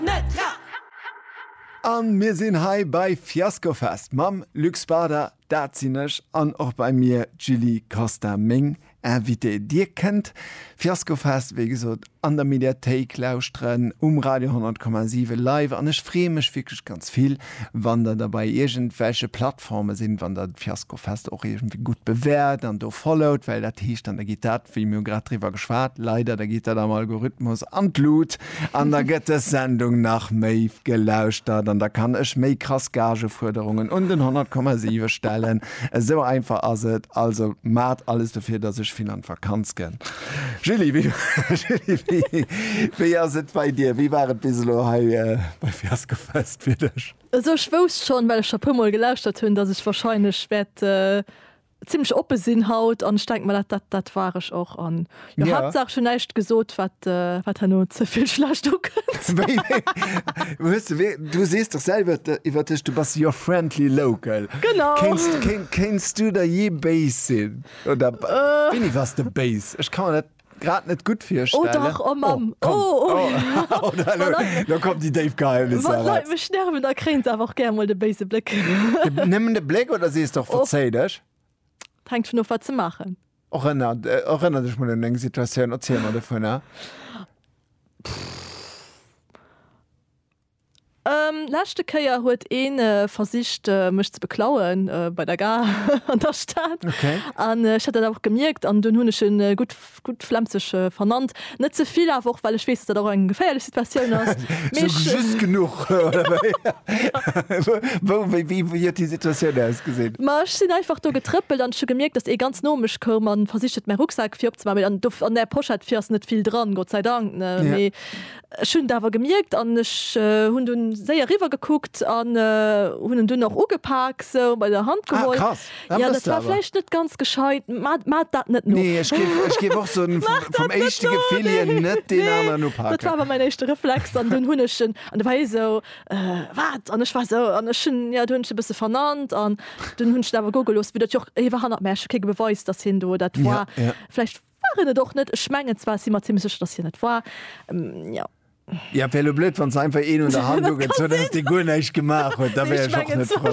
net dra! An mir sinn hei bei Fiaskofest mam Luc Spada, dat sinn ech, an och bei mir d'Julie Costa, meng Invitée. Dir kënnt Fiaskofest, wéi gesot, an der Mediathéik lauschteren, um Radio 100,7 live, an ech freeë mech wierklech ganz vill, wann der da bei iergendwelche Plattforme sidd, wann der d'Fiasko Fest och iergendwéi gutt bewäert an do followt, well dat heescht dann, da geet dat, wéi mir hu grad driwwer geschwat, leider, da geet dat am Algorithmus an d'Lut an da gëtt dës Sendung nach méi gelauschtert an da kann ech méi krass Gagefuerderungen un den 100,7 stellen. Esou einfach ass et. Also maacht alles dofir, dass ech vill an d'Vakanz ginn. Julie, wéi, Julie, wéi, wéi ass et bei dir? Wéi war et bis elo hei bei Fiasko Fest? fir dech. Also ech wousst schon, well ech scho puer mol gelauschtert hunn, dass ech wahrscheinlech wäert zimlech oppe sinn haut an ech denken mer dat dat dat war ech och an jo Ja. Haaptsaach ech hunn näischt gesot wat wat herno ze vill schlecht ukënnt. Wéi, hues de wéi, du sees dach selwer de iwwer dech, du bass your friendly local. Genau. Kéins kéin kéins du der jee béis sinn oder wéini waars de béis? Ech ka mer dat. grad net gutt virstellen. Oh dach, oh Mamm, oh, oh. Oh, da lo, lo kommen déi déif Geheimnisser erat. Wann d'Leit mech nerven, da kréien se awer och gär mol de béise Bléck. Nëmmen de Bléck oder sees de och verzéi dech? Et hänkt vun of, wat se maachen. Erënner, erënner dech mol un eng Situatioun, erziel mer dovunner. Leschte Kéier huet een versicht mech ze beklauen bei der Gare an der Stad an ech hat dat awer och gemierkt an dunn hunn ech en gutt gutt Flemzeg vernannt. Net ze vill awer och well ech weess dat dat och eng geféierlech Situatioun ass. Mee ech. Sou just genuch oder wéi? Wou, wéi, wéi, wéi huet déi Situatioun ausgesinn? Ma ech sinn einfach do getrëppelt an ech hu gemierkt dass ee ganz no mech koum an versicht huet mäi Rucksak fir opzemaachen. Mee an do an där Pochette fir ass net vill dran, Gott sei Dank, ne? Mee Ech hunn et awer gemierkt an ech hunn dunn séier riwwer gekuckt an hunn en dunn och ugepak sou bei der Hand geholl. Ah krass, dat mëss de awer. Jo, dat war vläicht net ganz gescheit. Maat dat net no. Nee, ech géif, ech géif och soen, vum éischte Gefill hier, net deen aneren upaken. Nee, dat war awer mäin éischte Reflex an dunn hunn ech en, an da war hie sou, wat? An ech war sou, an ech hunn, jo, du hunn ech e bësse vernannt an dunn hunn ech en awer go gelooss, vu datt jo och, hie war hannert mär, ech hu kee Beweis, datt hien do dat war. Vläicht. War en et och net. Ech mengen zwar, ech si mer zimlech sécher, datt hien et war. Jo. Jo, et wär elo blöd, wann se einfach een un der Hand ugezunn hätt, dee guer näischt gemaach huet. Da wär ech och net frou.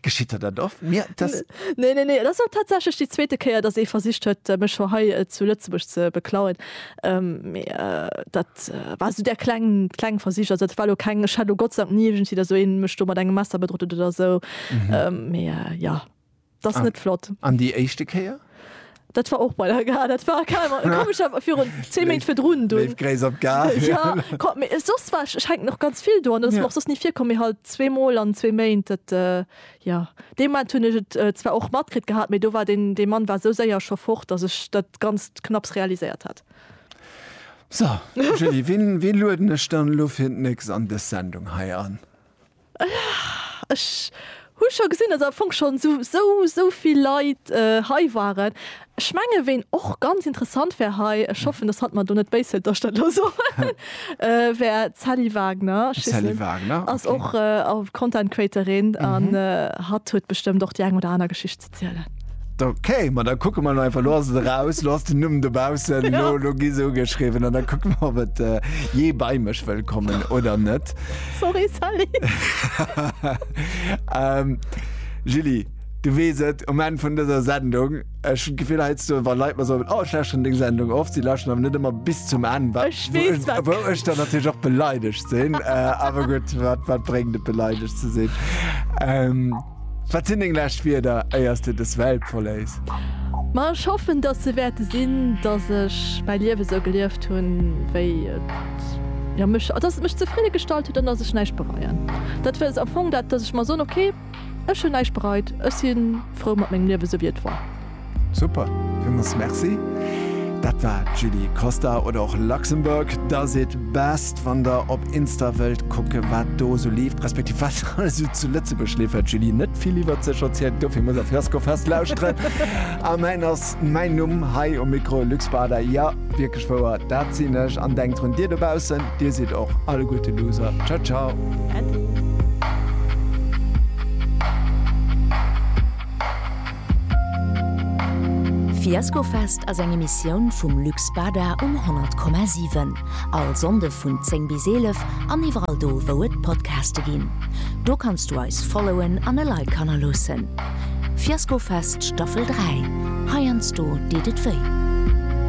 Geschitt der dat oft? Mir, et ass. Nee, nee, nee. Et ass och tatsächlech déi zweete Kéier, datt ee versicht huet, mech scho hei zu Lëtzebuerg ze beklauen. Mee dat war esou där kleng, kleng Versich. Also dat war elo keng, ech hat elo Gott sei Dank ni iergendwéi, datt esou ee mech do mat engem Messer bedrot huet oder esou. Mee jo. Das net flott. An déi éischte Kéier? Dat war och bei der Gare, dat war komescher virun 10 Méint virdrun do. Léif Gréiss op d'Gare. Jo, kommt, mee soss war ech, ech hänken och ganz vill do an dat ass mer och soss ni virkomm, mee halt zwee Mol an zwee Méint, dat, jo. Dee Moment hunn ech et zwar och matkritt gehat, mee do war deen, dee Mann war esou séier scho fort, datt ech dat Ganzt knapps realiséiert hat. So, Julie, wien, wien lueden ech dann elo fir d'Nächst an dës Sendung hei an? Ech hu scho gesinn, dass am Fong schonn esou, esou vill Leit hei waren. Ech menge ween och ganz interessant wär hei, ech hoffen, dass hatt mer do net béis hëlt, dass ech dat elo soen, wär d'Sally Wagner. D'Sally Wagner, ok. Ass och Content Creatorin an hatt huet bestëmmt och déi eng oder aner Geschicht zielen. Ok, ma da kucke mer lo einfach, lo ass et eraus, lo ass den Numm dobaussen, lo, lo gi se ugeschriwwen an da kucke mer, ob et jee bei mech wëll kommen oder net. Sorry, Sally. Julie, du weess et, um Enn vun dëser Sendung, ech hunn d'Gefill heiansdo, wa Leit mer soen, Oh, ech lauschteren deng Sendung oft, si lauschteren awer net ëmmer bis zum Enn, wa, wou ech dann natierlech och beleidegt sinn. Awer gutt, wat, wat bréngt et beleidegt ze sinn? Wat sinn deng lescht Wierder éier s de dës Welt verléiss? Ma ech hoffen, dass se wäerte sinn, dass ech mäi Liewe sou gelieft hunn, wéi et jo mech, dass et mech zefridde gestallt huet an dass ech näischt bereien. Dat wëll am Fong dat, dass ech mer soen, okay, ech hunn näischt bereit, ech si frou mat mengem Liewe, sou wéi et war. Super, villmols merci. Dat war d'Julie Costa oder och Luxembourg does it best. Wann der op Insta wëllt kucke wat do esou leeft, respektiv wat alles esou zu Lëtzebuerg leeft, huet d'Julie net vill iwwert sech erzielt, dofir muss der Fiaskofest lauschteren. A mäin ass mäin Numm hei um Mikro, Luc Spada. Jo, wierklech wouer, dat sinn ech. An denkt drun, dir dobaussen, dir sidd och alleguerte Loser. Ciao ciao. Äddi. Fiaskofest ass eng Emissioun vum Luc Spada um 100,7. All Sonnde vun 10 bis 11 an iwwerall do wou et Podcaste ginn. Do kanns du eis followen an e Like hannerloossen. Fiaskofest Staffel 3, heiansdo deet et wéi.